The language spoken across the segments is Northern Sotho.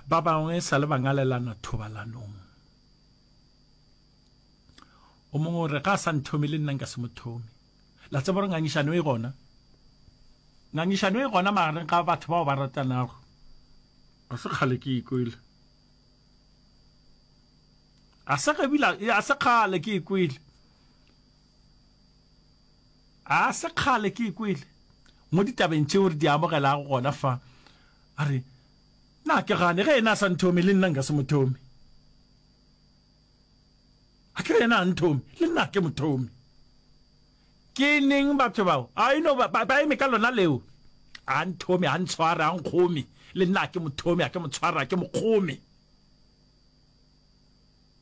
ba bangwe sa le bangalelana thobalanong o mongwe o re ga a sa nthomi le nna nka se mo thomi la tsebo re ngangišano e gona ngangišano e gona magareng ga batho bao ba ratanago a se kgale ke ikwele a se kgale ke ikwele A se kgale ke e kwele mo ditabeng tšeo re di amogelago gona fa, a re, Na ke gane ge yena a sa nthome, le nna nka se mo thome? A ke re yena a nthome, le nna ke mo thome. Ke neng batho bao? A ino ba, ba, ba eme ka lona leo. A nthome, a ntshware, a nkgome, le nna ke mo thome, a ke mo tshware, a ke mo kgome.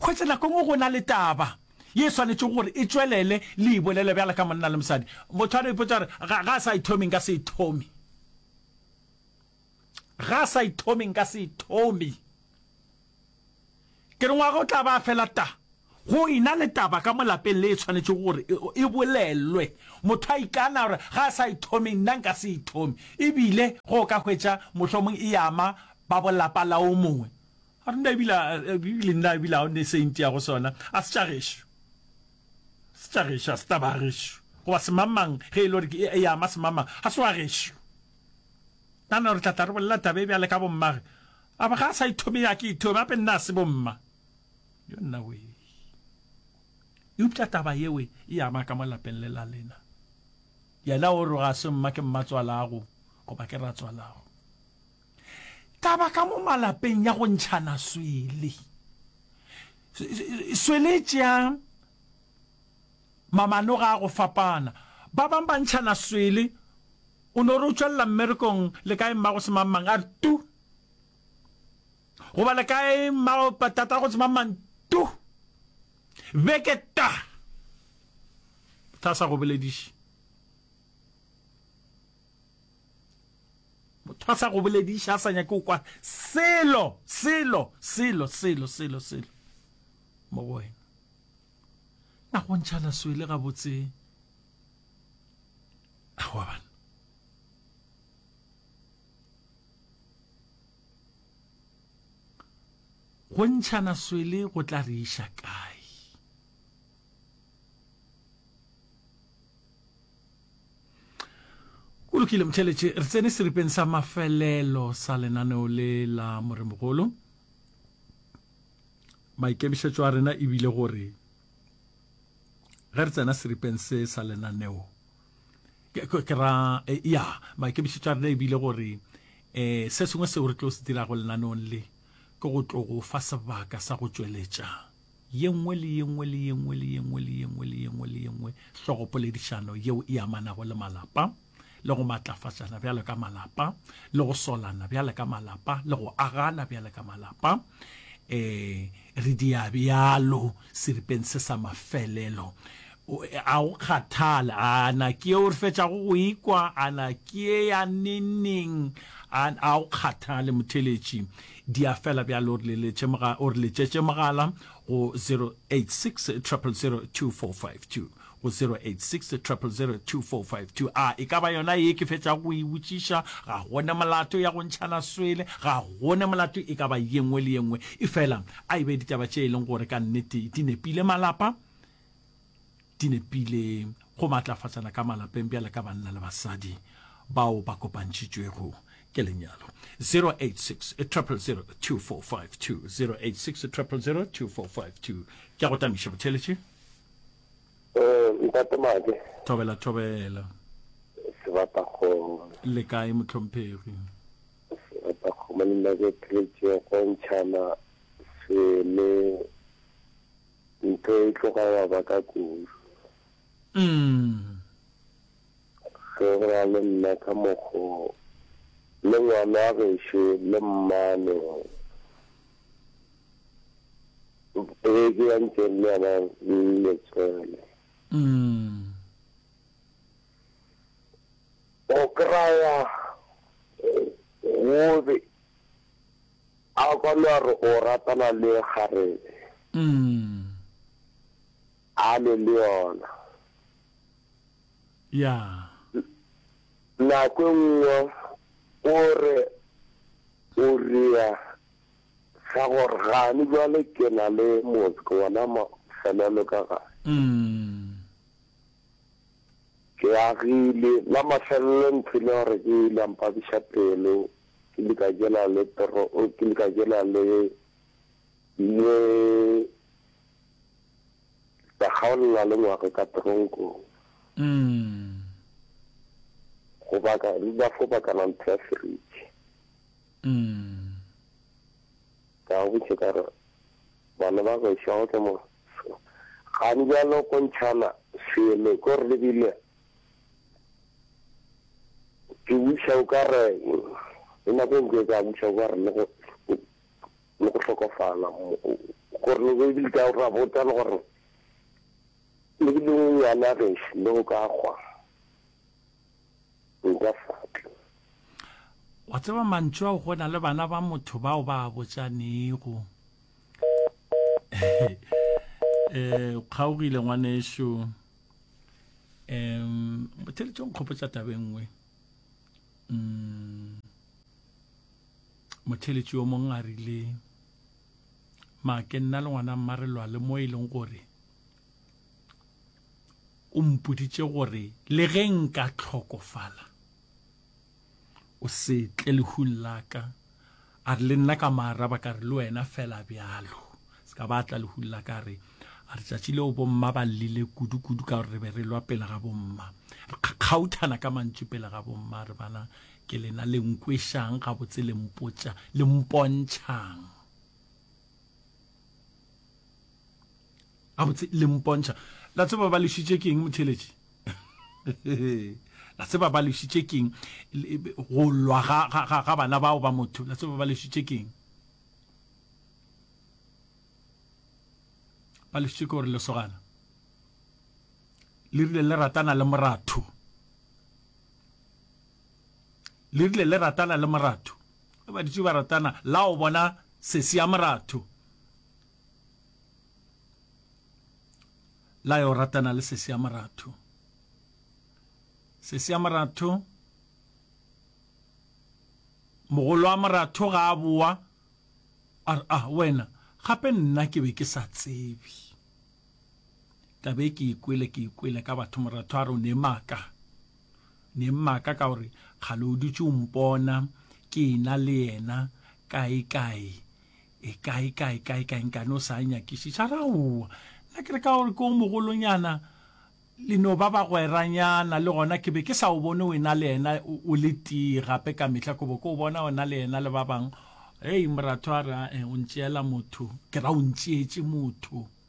Hwetša nako e nngwe go na le taba ye e swanetšego gore e tšwelele le e bolele bjalo ka monna le mosadi. Motho a no ipotsa gore, Ga, ga a sa e thome, nka se e thome. Ga a sa e thome, nka se e thome. Ke re ngwaga o tla ba fela ta go ina le taba ka molapeng le e tshwanetše gore e bolelwe motho a ikana gore ga a sa e thome nna nka se e thome ebile go ka hwetša mohlomong e ama ba bolapa la o mongwe a re nna ebila ebile nna ebila o ne saint ya go sona a se tša gešo se tša gešo a se taba a gešo goba semamang ge e le gore e ya ama semamang ga se wa gešo nana re tlatla re bolela taba e bjale ka bommage a ba ga a sa ithome ya ke ithome gape nna a se bomma yo nna we eupša taba yewe e ama ka mo lapeng le la lena yena o re ga se mma ke mmatswalago goba ke ratswalago Taba ka mo malapeng ya go ntšhana swele. Swele e tšea mamanoga a go fapana. Ba bang ba ntšhana swele, o no re o tšwelela mmerekong le kae mmago se mang mang a re tu goba le kae mmago patata go se mang mang tu beke ta tla sa go bolediše Motho a sa go bolediše, a sa nyake go kwa selo, selo, selo, selo, selo, selo mo go wena. Na go ntšhana swele gabotse? Awa bana. Go ntšhana swele go tla re iša kae? Go lokile motheletše, re tsene seripeng sa mafelelo sa lenaneo le la Moremogolo. Maikemišetšo a rena e bile gore ge re tsena seripeng se sa lenaneo ke ra eh, ya maikemišetšo a rena e bile gore um se sengwe seo re tlo se dirago lenaneong le ke go tlo go fa sebaka sa go tšweletša ye nngwe le ye nngwe le ye nngwe le ye nngwe le ye nngwe le ye nngwe le ye nngwe hlogopoledišano yeo e amanago le malapa le go matlafatšana bjalo ka malapa le go solana bjalo ka malapa le go agana bjalo ka malapa eh re dia bjalo seripeng se sa mafelelo O e a go kgathale, a na ke ye o re fetšago go e kwa, a na ke ye ya neng-neng, a a go kgathale motheletši. Di a fela bjale, o re leletše mogala, o re letšetše mogala go 0860002452, go 0860002452. A e ka ba yona ye ke fetšago go e botšiša? Ga go ne molato ya go ntšhana swele, ga go ne molato e ka ba ye nngwe le ye nngwe, efela a e be ditaba tše e leng gore ka nnete di nepile malapa, di nepile go maatlafatsana ka malapeng bjale ka banna le basadi bao ba kopantšhitšwego ke lenyalo 086 000 2452 086 000 2452 ke go tamiša botheletše eh, ntate mage thobela thobela sebata kgomo le kae motlhomphegi sebata kgomo le nna ke theletše go ntšhana se le Ntho e tloga ya ba ka kudu. Ge go na le nna ka mokgo, le ngwana gešo le mmane ge ke ya ntšeng le yena le tswele. Go kraya gobe A kwano a re o ratana le kgarebe. Umm. A le le yona. Yeah. Nako e nngwe o re o rea sa gore gane jwale ke na le motse ke bona mafelelo ka gae. Umm. Ke agile, la mafelelo nthwile gore ke ile mpabiša pelo, ke ile ka jela le toro, ke ile ka jela le, le, ka kgaolela le ngwage ka tronkong. Mm. Go baka, ba fo bakana ntho ya seriti. Mm. Ka botse ka re, bana ba go ešwa go tla mo. Gane bjalo ko ntšhana selo ko re lebile ke buša o ka re le nako e ntse ka buša o ka re le go le go hlokofala gore le be le ka ra botsa le gore le be le ngwana ge le go ka gwa Nka faphi? Wa tseba mantšu ao go na le bana ba motho bao ba a botšanego. Eh, kgaogile ngwanešu. Em, motheletšo nkgopotša tabe nngwe. Mm. Motheletši yo mongwe a rile, ma ke nna le ngwana mmarelwa le mo e leng gore O mpoditše gore le ge nka hlokofala, o se tle lehung la ka. A re, Le nna ka mo araba ka re, Le wena fela bjalo. Se ka ba a tla lehung la ka a re, A re, tšatši leo bomma ba llile kudu-kudu ka gore re be re lwa pele ga bomma. Re kgakgauthana ka mantšu pele ga bomma. A re, Bana, ke lena le nkwešang gabotse le mpotša, le mpontšhang. gabotse le mpontšha la tseba ba lešitše keng motheletši la tseba ba lešitše keng go lwa ga bana bao ba motho la tseba ba lešitše keng ba lešitše ke gore lesogana le rile le ratana le moratho le rile le ratana le moratho ba ditše ba ratana la o bona sesi ya moratho la yo ratana le sesi ya moratho sesi ya moratho mogolo wa moratho ga a boa a re ah wena gape nna ke be ke sa tsebe ka be ke ikwele ke ikwele ka batho moratho a re o ne maaka ne maaka ka gore kgale o dutse o mpona ke ena le yena kae kae E kae, kae, kae, kae, nkane o sa a nyakišiša? Ra owa. Nna ke re ka gore ke o mogolonyana, le no ba bagweranyana, le gona ke be ke sa o bone o ena le yena o le tee gape ka mehla, ke bo ke o bona o na le yena le ba bangwe. Hei, Moratho a re, A-e, o ntšeela motho. Ke ra, O ntšeetše motho.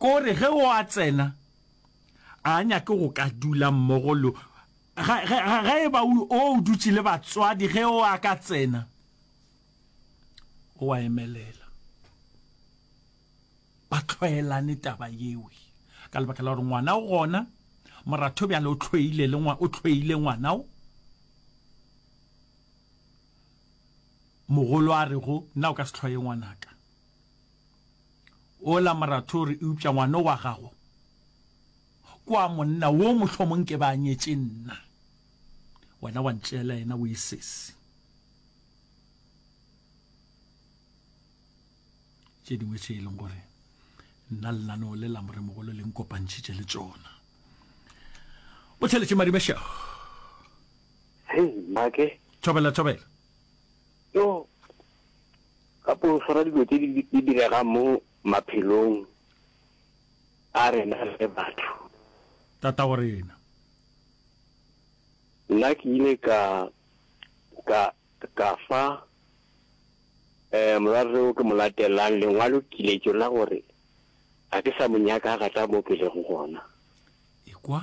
Ko re ge o a tsena, a nyake go ka dula mmogo le ge, ge, ge e ba o o dutše le batswadi, ge o a ka tsena, o a emelela ba tlwaelane taba yeo, ka lebaka la gore ngwana o gona, moratho bjale o tlhoile le ngwa, o tlhoile ngwana o. Mogolo a rego, Nna o ka se tlhoye ngwanaka ola Morathori, eupša ngwana o wa gago ke wa monna wo mohlomong ke ba nyetše nna, wena wa ntšeela yena, o e sesi. Tše dingwe tše e leng gore nna lenaneo le la moremogolo le nkopantšhitše le tšona. O theletše Madimešego. Hei, Mmake. Thobela, Thobela. Yo, ka pološora dilo tse di diregang mo maphelong a rena le batho. Tata wa rena. Nna ke ile ka ka ka fa eh morwarre o ke mo latelang lengwalo kiletso la gore a ke sa mo nyaka ga tla mo ke lego gona. Ikwa.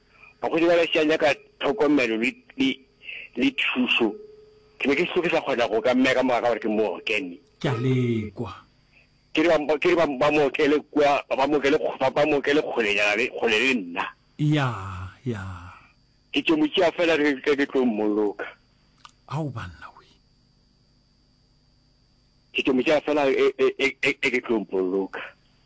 Bagodi ba lešea nyaka tlhokomelo le, le, le thušo. Ke be ke sego ke sa kgona go ka mmea ka moga ka gore ke mookemi. Ke a lekwa. Ke re ba, ke re ba, ba mo okele kua, ba mo okele, ba, ba mo okele kgolenyana le, kgole le nna. Ya, ya. Ke tšo mo tšea fela ge, ge ke tlo mmoloka. Ao, banna we. Ke tšo mo tšea fela ge, ge, ge, ge ke tlo mmoloka.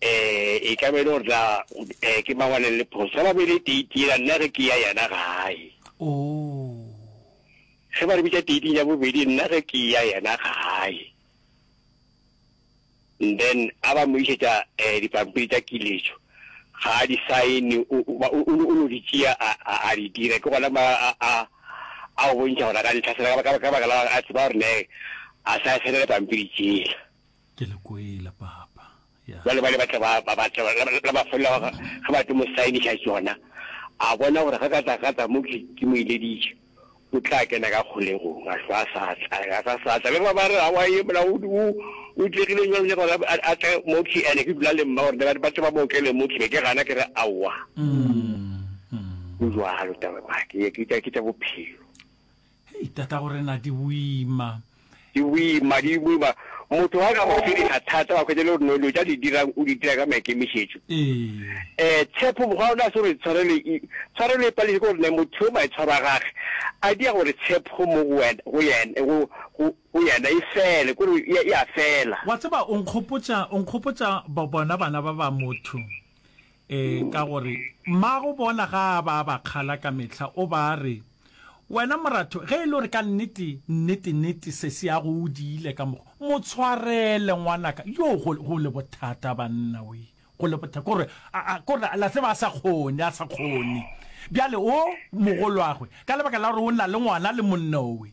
eh, e ka be e le gore tla eh, ke mang wa neng le phoso sa babedi date yela nna ge ke ya yena gae oh. ge ba re bitsa dating ya bobedi nna ge ke ya yena gae and then a ba mo isetsa um eh, dipampiri tsa kiletso ga a di sign o no di tšea a di dira ke gona a o bontšha gona ka ntlhasela ka baka la a tseba gore ne a sa senele pampiri tsela Ke le kwele, Papa. Ya. Bjale bale ba tla ba, ba, ba tla ba, la, la, la ba folla ga, ge ba tlo mo saeniša tšona, a bona gore ge ka tla, ka tla mo ke, ke mo ileditše, o tla kena ka kgolegong, a hlwa a sa tla, a sa, sa tla. Le ba ba re, Aowa, ye mola o, o, o tlegile bjang, bjang gore a, a tle mo ke ene, ke dula le mma, gore ba, ba tle ba mo okele mo ke, be ke gana ke re aowa. Go bjalo, taba, ke, ke tša, ke tša bophelo. Hei, tatago rena di boima. Di boima, di boima. Motho ga ka go fediša thata, wa khwetša le gore no lo tša di dirang, o di dira ka maikemišetšo. Ee. Um tshepo, mokgwa ona se gore tshwarelo e, tshwarelo e pališe ke gore ne motho yo maitshwaro a gage a dia gore tshepo mo go wena, go yena, go, go, go yena e fele, kore e, e a fela. Wa tseba, o nkgopotša, o nkgopotša bo, bona bana ba ba motho. Ee, ka gore mmago bona ga a ba a ba kgala ka mehla, o ba a re, Wena moratho, ge e le gore ka nnete, nnete-nnete se se ya go o diile ka mokgwa, mo tshwarele ngwanaka. Yoo, go, go le bothata, banna, we, go le bothata. Ke gore, a, a, ke gore, la tseba, a sa kgone, a sa kgone. Bjale o, mogolwagwe, ka lebaka la gore o na le ngwana le monna o we.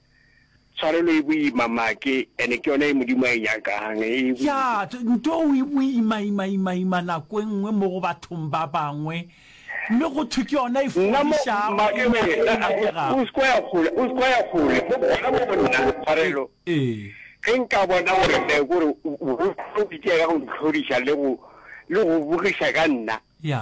Tshwarelo e boima, make, and ke yona ye Modimo a e nyakang. E Ya, boima. t, ntoo e boima, ima, ima, ima nako e nngwe mo go bathong ba bangwe, mme go thwe ke yona e Nna mo, fodišago, make, e nya, wee, e a-a, o, nyakegago. o se ke wa ya kgole, o se ke wa ya kgole, mo, gona mo go nna, E, Tshwarelo. ee. Ge nka bona gore, ne, gore o, o, o, o itšeela go ntlhodiša le go, le go bogiša ka nna. Ya.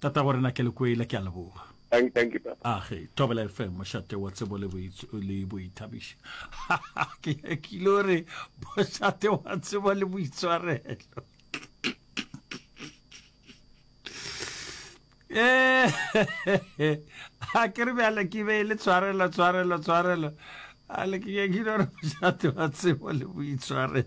tatago rena kelekwele ke a leboga Thank, thank you, Papa. a ge thobela fm mošate wa tsebo le boitsh- le boithabišo ke nyakile o re mošate wa tsebo le boitshwarelo Eh, a ke re bjale ke be e le tshwarelo tshwarelo tshwarelo a le ke nyakile o re mošate wa tsebo le boitshwarelo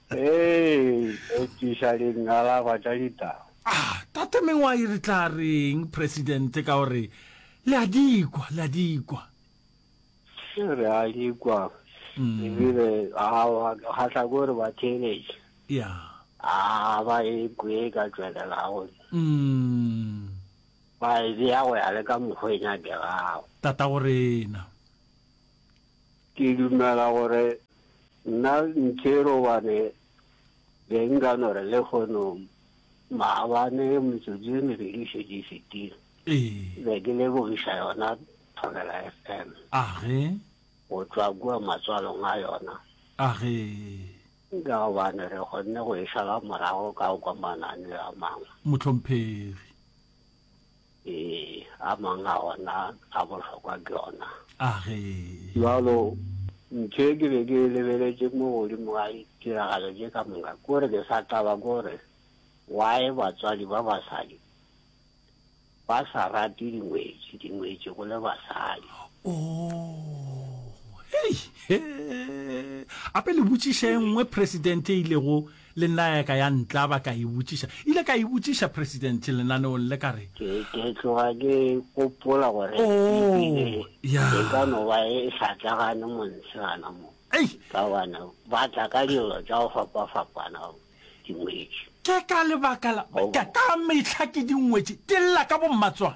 Ee, ekiša dingalaba tša ditau. Ah, Tate Mengwai re tla reng Presidente ka gore le a di kwa, le a di kwa. Re a di kwa. Mm. Ebile awa ga tla gore ba theeletše. Yeah. Ah, ba e kwe ka tšwelelago. Mm. Ba e bea go ya le ka mokgwa e nyakegago. Tata go rena. Ke dumela gore nna nthe robane be nka no re le kgono maabane metsotso e mebedi e šetše e fetile. Ee. Be ke lebogiša yona Thobela FM. Age. Go tšwa kua matswalong a yona. Age. Ka gobane re kgonne go e šala morago ka go kwa mananeo a mangwe. Mohlomphegi. Ee, a mang a ona a bohlokwa ke ona. A ge. Bjalo, ntše ke be ke e lebeletše mo godimo ga ditiragalo tše ka moka, ke gore ke sa taba ke gore why batswadi ba basadi ba sa rate dingwetši, dingwetši go le basadi. Oh, hei, he, ape le botšiša e nngwe President e ilego Le nna ya ka ya ntlaba, ka e botšiša. Ile ka e botšiša Presidente lenaneong le, ka re. Ke, ke tloga ke gopola gore e bile Oh, ya. e ka no ba e sa tlagane montshe gana mo, Ei! ka gobane ba tla ka dilo tša go fapafapana dingwetši. Ke ka lebaka la, Goba. ka, ka mehla ke dingwetši, di lla ka bommatswana.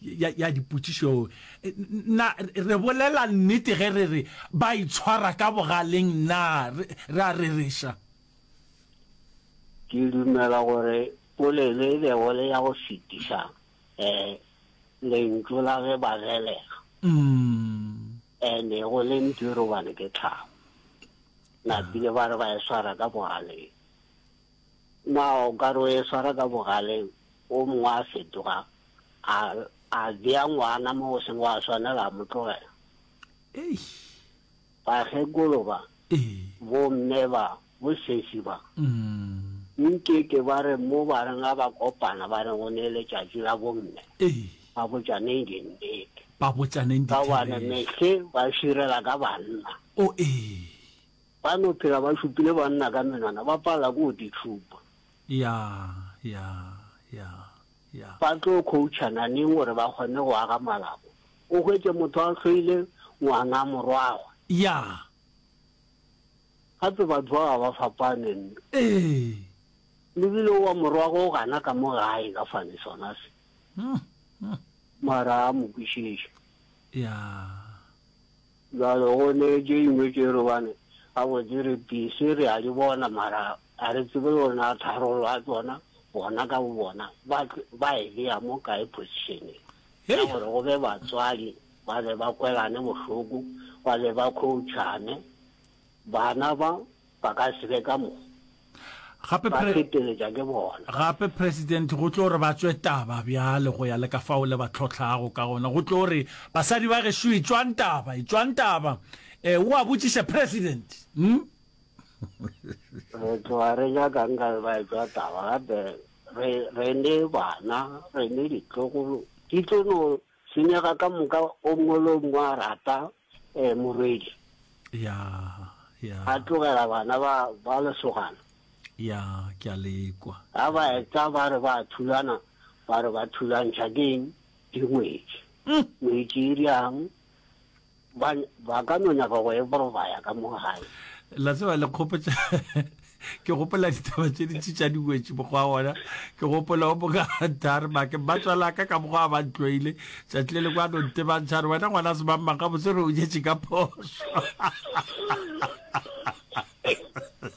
ya, ya dipotšišo e, na re bolela nnete ge re re ba itshwara ka bogaleng na re, re a rereša ke dumela gore polelo e bego le ya go fetiša um lentšu la ge ba gelega mm. and-e go le mpiro bane ke tlhabo napile ba re ba e swara ka bogaleng Na o ka re o e swara ka bogale wo mongwe a fetoga a, a bea ngwana mo go seng wa swanela a mo tlogela? Eish. Bakgekolo ba, Ee. bomme ba, bosesi ba, Mm. nke ke ba re mo ba reng a ba kopana ba reng go ne letšatši la bomme, Ee. ba botšaneng dinnete, Ba botšaneng ka gobane ditherešo. mehle ba širela ka banna. O ee. Ba no phela ba šupile banna ka menwana, ba palela ke go di tšhupa. Ya, ya, ya, ya. Ba tlo khouchana neng gore ba kgone go aga malako? O hwetše motho a hloile ngwana, morwagwe. Ya. Gape batho ba ga ba fapane, mme. Ee. Lebile o wa morwagwe o gana ka mo gae ka fane sona se. Mara a mo kwišiše. Ya. Bjale go ne ke ingwe ke re bane gabotse re pise re a di bona mara a re tsebe gore na tharollo ya tsona bona ka bo bona ba ba e beya mo kae positioneng ya gore go be batswadi ba be ba kwelane bohloko ba be ba coachane bana ba Ba ka se be ka mo. Gape Ba pre, feteletša ke bona. gape president go tlo re ba tswe taba bjale go ya le ka fao le ba tlhohlago ka gona. Go tlo re, Basadi ba gešo etšwang taba, etšwang taba. Eh, o a botšiša president. Hm? Re tloga re nyakang ka re ba etšwa taba gape re, re ne bana, re ne ditlogolo, di tlo no Senyega ka moka o ngolo ngwa rata eh morwedi. Ya ya. A tlogela bana ba ba lesogana. Ya ke a lekwa. Ha ba etsa ba re ba thulana ba re ba thulantšha keng dingwetši. Ngwetši e riang? ba ba ka no nyaka go e borobaya ka mo gae la tseba le kgopetša ke gopola ditaba tše dintši tša diwetši mokgwa wona ke gopola o moka tare make ba tswalaka ka mokgwa ba ntloile tšatši le le kwa nonte ba ntšhare wena ngwana se bang maka botse re o jetše ka phoso